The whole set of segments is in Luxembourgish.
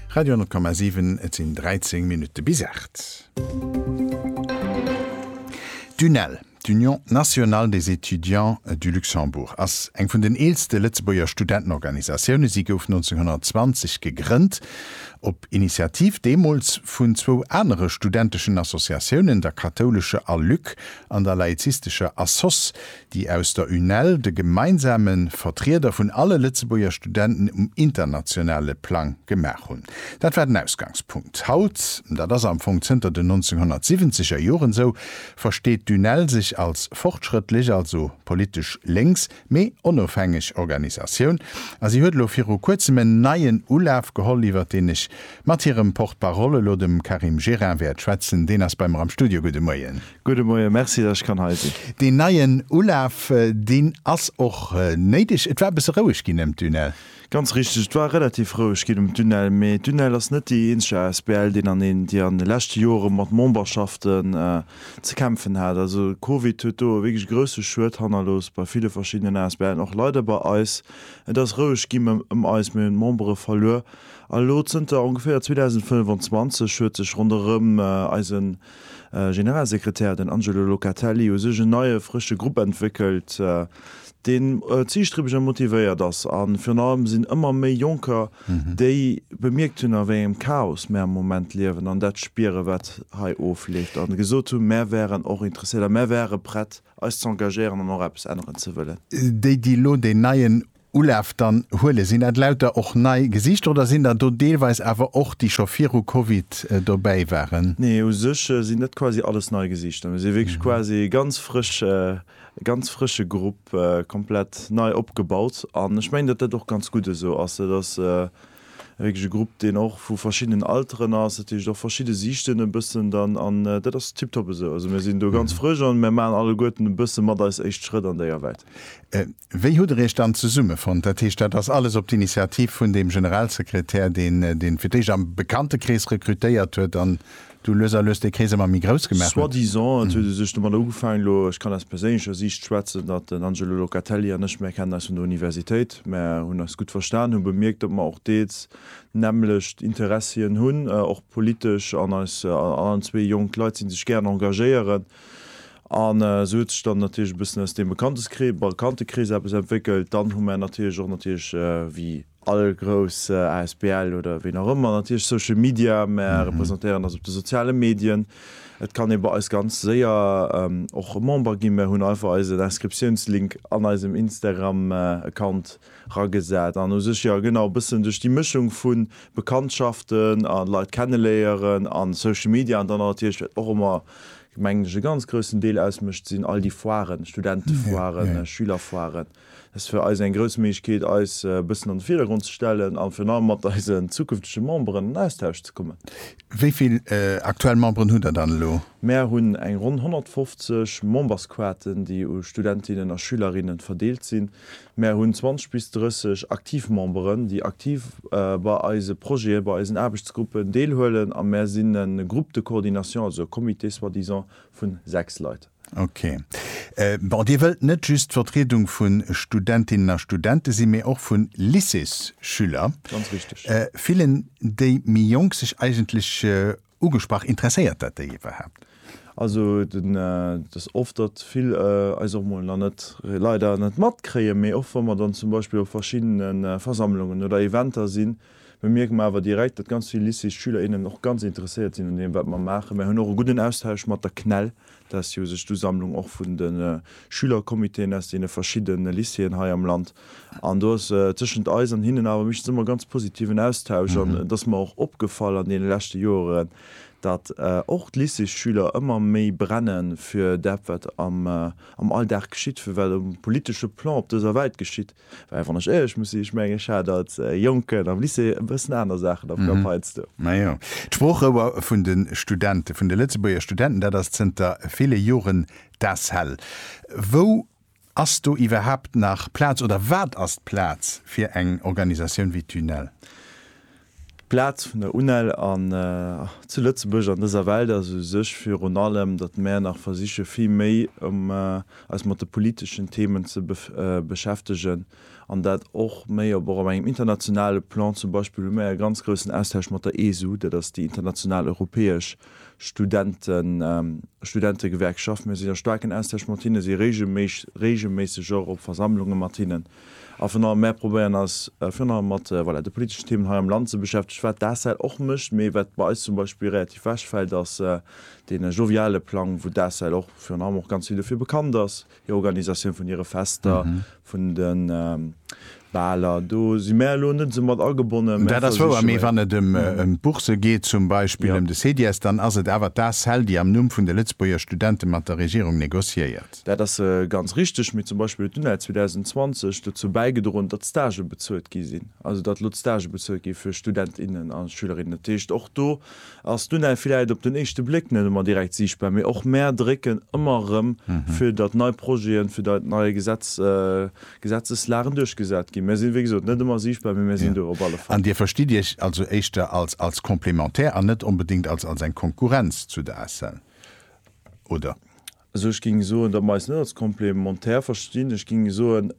Radio 10,7, Et sinn 13 Minutte bis 8. D'UNEL, d'Union Nationale des Étudiants du Luxembourg, ass eng vun den eelste Lëtzebuerger Studentenorganisatioune. Si gouf 1920 gegrënnt op Initiativ deemools vun zwou anere studenteschen Associatiounen, der kathoulescher Aluc an der laizistescher Assoss, déi aus der UNEL, de gemeinsame Vertrieder vun alle Lëtzebuerger Studenten um internationale Plang, gemaach hunn. Dat war den Ausgangspunkt. Haut, dat ass am Fong zënter den 1970 er Joren esou, versteet d'UNEL sech als fortschrëttlech, also politesch lénks, mee onofhängeg Organisatioun a si huet elo viru kuerzem en neien Ulaf geholl, iwwert deen ech mat hirem Porte-parole elo, dem Karim Gerin, wäert schwätzen. Deen ass bei mer am Studio. Gudde Moien. Gudde Moien, merci dat ech kann hei sinn. Deen neien Ulaf, deen ass och néideg. Et war e bësse roueg ginn ëm Dunel. Ganz richteg, et war relativ roueg ginn ëm Dunel, mee Dunel ass net déi eenzeg asbl, déi an de leschte Jore mat Memberschaften ze kämpfen hat. Also Covid huet do e wierklech grousse Schued hannerlooss bei ville verschiddenen asbl'en, och leider bei eis. Et ass roueg ginn ëm eis, mir hunn Membere verluer a lo zënter ongeféier 2025 huet sech ronderëm eisen Generalsekretär, den Angelo Locatelli, u sech en neie frësche Grupp entwéckelt, deen ziilstriebeg a motivéiert ass. A virun allem sinn ëmmer méi Jonker, déi bemierkt hunn, a wéi engem Chaos mir am Moment liewen an dat spieren, wat hei ofleeft, a gesot hunn, Mir wären och interesséiert a mir wäre prett, eis z'engagéieren an och eppes änneren ze wëllen. Déi, déi elo deen neien Ulaf, dann huele sinn dat lauter och nei Gesichter oder sinn der do deelweis awer och déi scho viru Covid dobäi waren? Nee, u sech sinn dat quasi alles nei Gesichter. Mir si wierklech quasi e ganz frësch, ganz frësche Grupp, komplett nei opgebaut an ech mengen, datt dat och ganz gutt esou ass. Dat ass e richtege Grupp, deen och vu verschiddenen Alteren ass, dat heescht och verschidde Siichten e bëssen dann an dat ass tiptop esou. Also mir sinn do ganz frësch an mir maachen alleguerten e bësse mat eis éischt Schrëtt an déi Awert. Wéi hutt Der Iech dann zesummefonnt? Dat heescht, dat ass alles op d'Initiativ vun deem Generalsekretär, deen deen fir d'éischt am Bekanntekrees rekrutéiert huet an Du lues a lues dee Krees ëmmer méi grouss gemaach huet. Soi-disant, et huet e sech domatter ugefaangen, elo, ech kann aus perséinlecher Siicht schwätzen, datt den Angelo Locatelli an ech, mär kennen eis vun der Universitéit, mär hunn eis gutt verstan, hu bemierkt, datt mer och deels d'nämmlecht Interessien hunn, och politesch, an eis allen zwee jonk Leit sinn, déi sech gären engagéieren. An esou huet sech dann natierlech e bëssen aus deem Bekanntes-, Bekanntekrees eppes entwéckelt. Dann hu mär natierlech och natierlech, wéi. all grouss Asbl oder ween och ëmmer, natierlech Social Media, mär representéieren eis op de soziale Medien, et kann ee bei eis ganz séier och Member ginn, mär hunn einfach eisen Inscriptiounslink an eisem Instagram Account ragesat an u sech jo genau e bëssen duerch déi Mëschung vu Bekanntschaften a Leit kenneléieren a Social Media an dann natierlech wat och ëmmer mengen ech e ganz groussen Deel ausmécht sinn all déi Foiren, Studentefoiren, Schülerfoiren. Et ass fir eis eng grouss Méiglechkeet, eis e bëssen an de Virdergrond ze stellen a virun allem mat eisen zukünftege Memberen an Austausch ze kommen. Wéi vill aktuell Memberen hutt Der dann elo? Mär hunn eng ronn 150 Membersquaten, déi u Studentinnen a Schülerinnen verdeelt sinn. Mär hunn 20 bis 30 aktiv Memberen, déi aktiv bei eise Projeten, bei eisen Aarbechtsgruppen deelhuelen a mär sinn e Groupe de coordination, also e Comité soi-disant vun 6 Leit. Ok. Bon, Dir wëllt net just d'Vertriedung vu Studentinnen a Studente sinn, mee och vu Lycéesschüler. Ganz richteg. Fillen déi méi Jonk sech eigentlech ugesprach? Interesséiert dat déi iwwerhaapt? Also, et ass oft, datt vill eis och mol nach net, leider net matkréien, mee och wa mer dann zum Beispill op verschiddene Versammlungen oder Eventer sinn, bemierke mer awer direkt, datt ganz vill Lycéesschüler, innen och ganz interesséiert sinn un deem, wat mer maachen. Mer hunn och e gudden Austausch mat der CNEL. Dat ass jo u sech d'Usammlung och vun de Schülercomitéen aus deene verschidde Lycéeën hei am Land. An do ass tëschent eis an hinnen awer meeschtens ëmmer ganz positiven Austausch. An et ass mer och opgefall an deene leschte Joeren, datt och d'Lycéesschüler ëmmer méi brenne fir dat, wat am Alldag geschitt, fir wat um politesche Plan op dëser Welt geschitt. Well wann ech éierlech muss sinn, ech mengen ech hat als Jonken am Lycée e bëssen aner Saachen am Kapp heiansdo. Na jo. D'Sproochrouer vun de Studenten, vun de Lëtzebuerger Studenten, dat ass zënter ville Joren d'ACEL. Wou ass do iwwerhaapt nach Plaz oder wat ass d'Plaz fir eng Organisatioun wéi d'UNEL? D'Plaz vun der UNEL an zu Lëtzebuerg an dëser Welt ass u sech virun allem, datt mär nach versiche vill méi eis mat de politeschen Themen ze beschäftegen an dat och méi op och op engem internationale Plan. Zum Beispill hu mär e ganz groussen Austausch mat der ESU, dat ass déi international europäesch Studentegewerkschaft. Mir sinn a staarken Austausch mat hinnen, si regelméisseg och op Versammlunge mat hinnen. A virun allem, mär probéieren eis virun allem mat, voilà, de politeschen Themen hei am Land ze beschäftegen, wat d'ACEL och mécht. Mee wat bei eis zum Beispill relativ wechfält, ass dee joviale Plang, wou d'ACEL och virun allem och ganz vill dofir bekannt ass, hir Organisatioun vun hire Fester, vun de Baler. Do si mär elo net esou mat agebonnen. Dat ass wouer. Mee wann et ëm d'Bourse geet zum Beispill, ëm de CEDIES, dann ass et awer d'ACEL, déi am Numm vun de Lëtzebuerger Studente mat der Regierung negociéiert. Dat ass ganz richteg, mee zum Beispill huet d'UNEL 2020 dozou bäigedroen, datt d'Stagë bezuelt gi sinn, also datt elo d'Stagë bezuelt gi fir Student, innen a Schülerinnen. Dat heescht, och do ass d'UNEL villäit op den éischte Bléck net ëmmer direkt siichtbar, mee och mär drécken ëmmer erëm, fir datt nei Projeten, fir datt nei Gesetz, Gesetzeslagen duerchgesat ginn. Mär sinn, wéi gesot, net ëmmer siichtbar, mee mär sinn do op alle Fall. An Dir verstitt Iech also éischter als, als Complémentaire an net onbedéngt als, als eng Konkurrenz zu der ACEL, oder? Also ech géing soen, datt mer eis net als Complémentaire verstinn. Ech géing soen,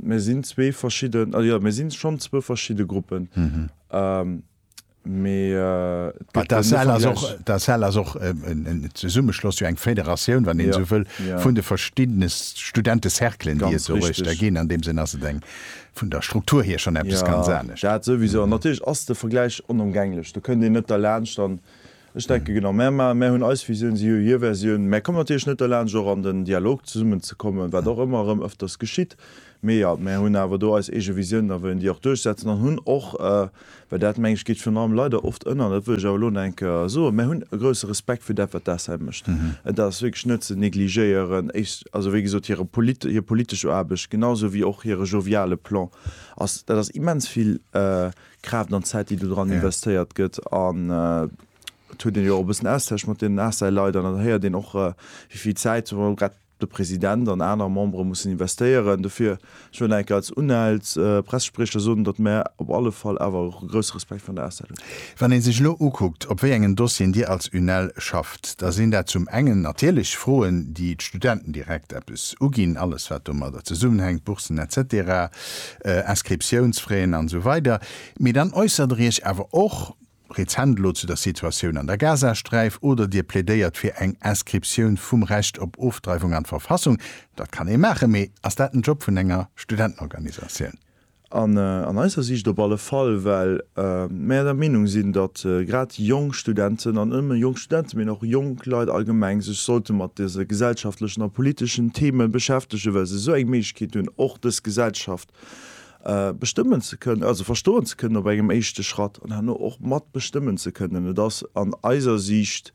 mir sinn zwee verschidden, jo, mir si schonn zwou verschidde Gruppen, mee et gëtt den Vergläich. D'ACEL ass och en Zesummeschloss, jo eng Fédératioun, wann een esou wëll, vun de verschiddene Studentecerclen, déi et do uecht der ginn. An deem Sënn ass et eng, vun der Struktur hier, schonn eppes ganz anescht. Dat souwisou. An natierlech ass de Vergläich onëmgänglech. Do kënnt een net derlaanscht. An Ech denke genau, mär ma, mär hunn eis Visioun, si hu hir Versioun. Mär kommen natierlech net derlaansch och an den Dialog zesummen ze kommen, wat och ëmmer erëm ëfters geschitt. Mee jo, mär hunn awer do eis eege Visiounen a wëllen déi och duerchsetzen an hunn och, well dat meng ech geet virun allem leider oft ënner, dat wëll ech awer elo an eng Kéier soen, mär hunn e grousse Respekt fir dat wat d'ACEM mécht. Et ass wierklech net ze negligéieren, also wéi gesot hire, hir politesch Aarbecht, genau esou wéi och hire joviale Plan ass, dat ass immens vill Kraaft an Zäit déi do dran investéiert gëtt an et huet een jo och e bëssen Austausch mat deenen ACEL-Leit an dann héiert een och wéi vill Zäit zum Beispill grad de President an aner Membere mussen investéieren dofir. Ech wëll enk als UNEL's Pressespriecher soen, datt mär op alle Fall awer och e grousse Respekt vun der ACEL hunn. Wann ee sech elo ukuckt op wéi engen Dossieren Dir als UNEL schafft, da sinn dat zum engen natierlech Froen déi d'Studenten direkt eppes uginn, alles wat domadder zesummenhänkt, Boursen etc. Inscriptiounsfraien an esou weider Mee dann äussert der Iech awer och rezent elo zu der Situatioun an der Gazasträif oder Dir plädéiert fir eng Inscriptioun vum Recht op Ofdreiwung an d'Verfassung. Dat kann ee maachen, mee ass dat den Job vun enger Studentenorganisatioun? An eiser Siicht op alle Fall, well mäer der Meenung sinn, datt grad jonk Studenten, an net nëmme jonk Studenten, mee och jonk Leit allgemeng, sech sollte mat dëse gesellschaftlechen a politeschen Theme beschäftegen, well se esou eng Ket hunn, och dës Gesellschaft bestëmmen ze kënnen, also verstoen ze kënnen op engem éischte Schratt an herno och mat bestëmmen ze kënnen. Et ass an eiser Siicht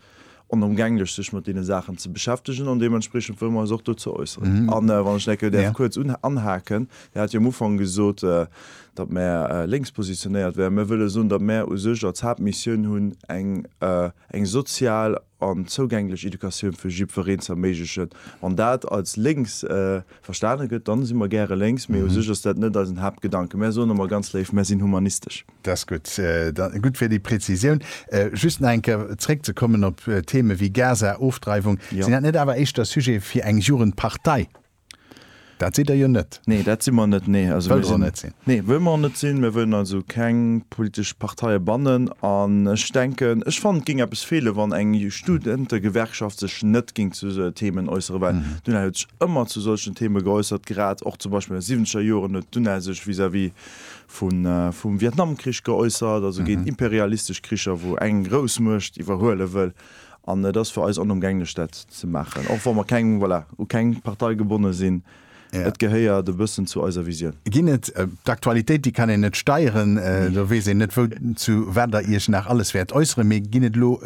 onëmgänglech, sech mat deene Saachen ze beschäftegen an deementspreechend wëlle mer eis och dozou äusseren. A wann ech enke däerf kuerz anhaken, Dir hat jo am Ufank gesot, datt mer lénks positionéiert wären. Mer wëlle soen, datt mer u sech als Haaptmissioun hunn, eng sozial, an zougänglech Educatioun fir jiddwereen ze erméiglechen. Wann dat als lénks verstane gëtt, dann si mer gäre lénks, mee u sech ass dat net eisen Haaptgedanken. Mär soen emmer ganz léif, mär sinn humanistesch. Dat ass gutt. Gutt fir déi Präzisioun. Just nach eng Kéier zréck ze kommen op Themen wéi Gaza, Ofdreiwung, sinn dat net awer éischter Sujet fir eng Jugendpartei? Dat sidd Der jo net. Nee, dat si mer net, nee. Also mir sinn. Nee, wëlle mer och net sinn. Mir wëllen also keng politesch Parteie bannen. An ech denken, ech fannen, et géing eppes feele wann eng Studentegewerkschaft sech net géing zu esou Themen äussere, well d'UNEL huet sech ëmmer zu solchen Themen geäussert, grad och zum Beispill an de siwwenzeger Joren huet d'UNEL sech vis-à-vis vum Vietnamkrich geäussert, also géint imperialistesch Kricher, wou eng Groussmuecht iwwerhuele wëll. An et ass fir eis onëmgänglech, dat ze maachen, och wa mer keng, voilà, u keng Partei gebonne sinn. Et gehéiert e bëssen zu eiser Visioun. Ginn et, d'Aktualitéit, déi kann een net steieren, do weess een net, wou, zu wat Der Iech nach alles wäert äusseren, mee ginn et elo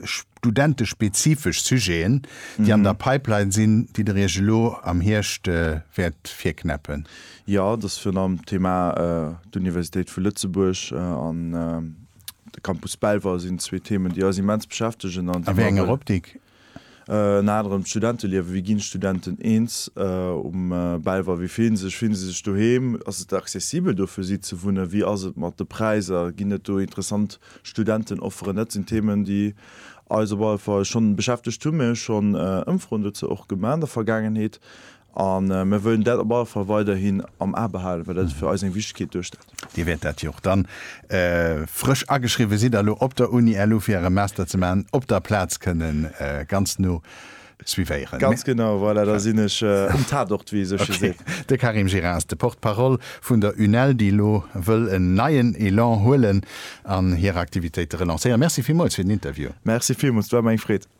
studentespezifesch Sujeten, déi an der Pipeline sinn, déi Der Iech elo am Hierscht wäert virknäppen? Jo, et ass virun allem d'Thema d'Universitéit vu Lëtzebuerg an. De Campus Belval sinn zwee Themen, déi eis immens beschäftegen an déi mer wëllen. A wéi enger Optik? Ënner anerem d'Studenteliewen, Wéi ginn d'Studenten eens um Belval? Wéi fillen se sech? Fillen se sech doheem? Ass et accessibel do fir si ze wunnen? Wéi ass et mat de Präiser? Ginn et do interessant Studentenofferen? Dat sinn Themen, déi eis op alle Fall schonn beschäftegt hunn. Mir hu schonn Ëmfroen dozou och gemaach an der Vergaangenheet. A mir wëllen dat op alle Fall weiderhin am A behalen, well dat fir eis eng Wichtegkeet duerstellt. Dir wäert dat jo och dann, frësch ageschriwwe sidd a lo op der Uni LU fir äre Master ze maachen, op der Plaz kënnen ganz no suivéieren. Ganz genau, voilà, da sinn ech um Tatort, wéi ee sou sche seet. Ok. De Karim Gira ass de Porte-parole vun der UNEL, déi lo wëll en neien Elan huelen an hir Aktivitéite relancéieren. Merci villmools fir den Interview. Merci villmools, et war mer eng Freed.